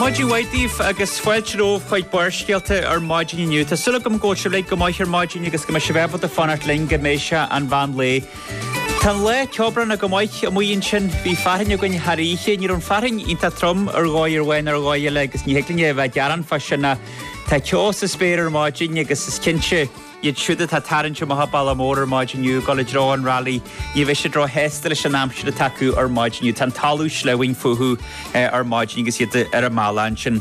Maidin mhaith daoibh agus fáilte romhaibh chuig Barrscéalta ar Maidin inniu. Tá súil agam go bhfuil sibh uilig go maith ar maidin agus go mbeidh sibh ábalta fanacht linn go mbeidh sé an mheán lae. Tá an lá ceobhránach go maith amuigh ansin. Bhí fearthainn againn thar oíche. Ní raibh an fearthainn iontach trom ar dhóigh amháin ar dhóigh eile agus ní thig linne a bheith ag gearán fá sin ach tá ceo sa spéir ar maidin agus is cinnte Iad siúd atá ag tarraingt amach an bealach mór ar maidin inniu ag dul i dtreo an rally, ní bheidh siad ró-shásta leis an aimsir atá acu ar maidin inniu. Tá an talamh sleamhain fúthu ar maidin agus iad ar a mbealach ansin.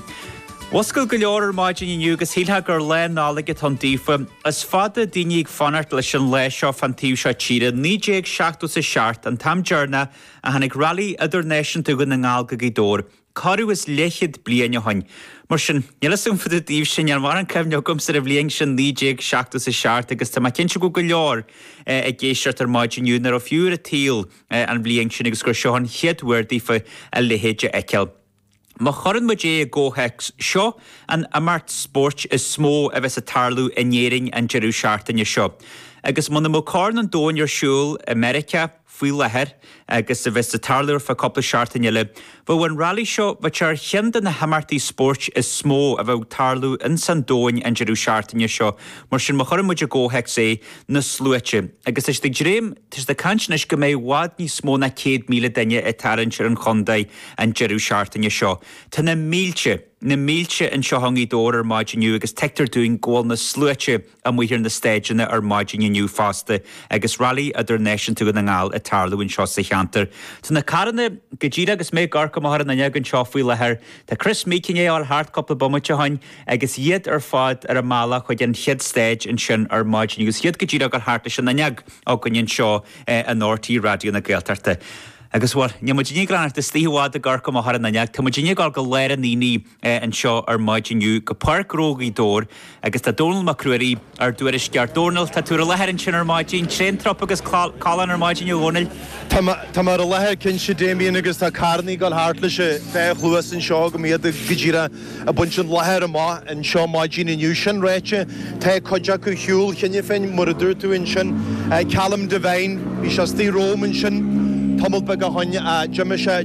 Mhuscail go leor ar maidin inniu agus shíltheá gur lá Nollag atá ann daofa. Is fada daoine ag fanacht leis an lá seo fán taobh seo tíre. 1977 an t-am deireanach a tháinig rally idirnáisiúnta Dhún na nGall go Gaoth Dobhair. Corradh is leathchéad bliain ó shin, mar sin. Níl fhios agam fá dtaobh daoibhse, níl mórán cuimhne agamsa ar an bhliain sin 1977 agus tá mé cinnte go bhfuil go leor ag éisteacht ar maidin inniu nach raibh fiú ar an tsaol an bhliain sin agus gur seo an chéad uair daofa a leithéid a fheiceáil. Má chuireann muid é i gcomhthéacs, seo an imeacht spóirt is mó a bheas ag tarlú in Éirinn an deireadh seachtaine seo agus muna mbeadh Corn an Domhain ar siúl i Meiriceá, faoi láthair agus a bheas ag tarlú ar feadh cúpla seachtain eile. Bheadh an rally seo b'fhéidir ar cheann de na himeachtaí spóirt is mó a bheadh ag tarlú ins an domhain an deireadh seachtaine seo mar sin má chuireann muid i gcomhthéacs é, na sluaite. Agus tá siad ag dréim, tá siad ag caint anois go mbeidh i bhfad níos mó ná céad míle duine ag tarraingt ar an chontae an deireadh seachtaine seo. Tá na mílte, na mílte anseo i nGaoth Dobhair ar maidin inniu agus tuigtear dúinn go bhfuil na sluaite, amuigh ar na stáideanna ar maidin inniu fosta agus Railí Idirnáisiúnta Dhún na nGall ag tarlú anseo sa cheantar. Tá na carranna go díreach agus mé ag amharc amach ar an fhuinneog anseo faoi láthair. Tá Kris Meeke i ndiaidh a dhul thart cúpla bomaite ó shoin agus iad ar fad ar a mbealach chuig an chéad stáid ansin ar maidin agus iad go díreach ag dul thart leis an fhuinneog againn anseo in RTÉ Raidió na Gaeltachta. Agus, bhuel, níl muidinne ag dul a fhanacht istigh i bhfad ag amharc amach ar an fhuinneog, tá muidinne ag dul go lár an aonaigh. anseo ar maidin inniu go Páirc Ghnó Ghaoth Dobhair agus tá Dónall Mac Ruairí ár dtuairisceoir. Dónall, tá tú ar an láthair ansin ar maidin. Tréan trup agus callán ar maidin a Dhónaill. Tá mé ar an láthair cinnte Damien agus tá carrannaí ag dul thart leis an dá chluas anseo agam, iad go díreach ag baint an láthair amach anseo maidin inniu. Sin ráite tá cuid acu ar shiúl cheana féin mar a dúirt tú ansin. Callum Devine, bhí sé istigh romham ansin tamall beag ó shoin, d'imigh sé.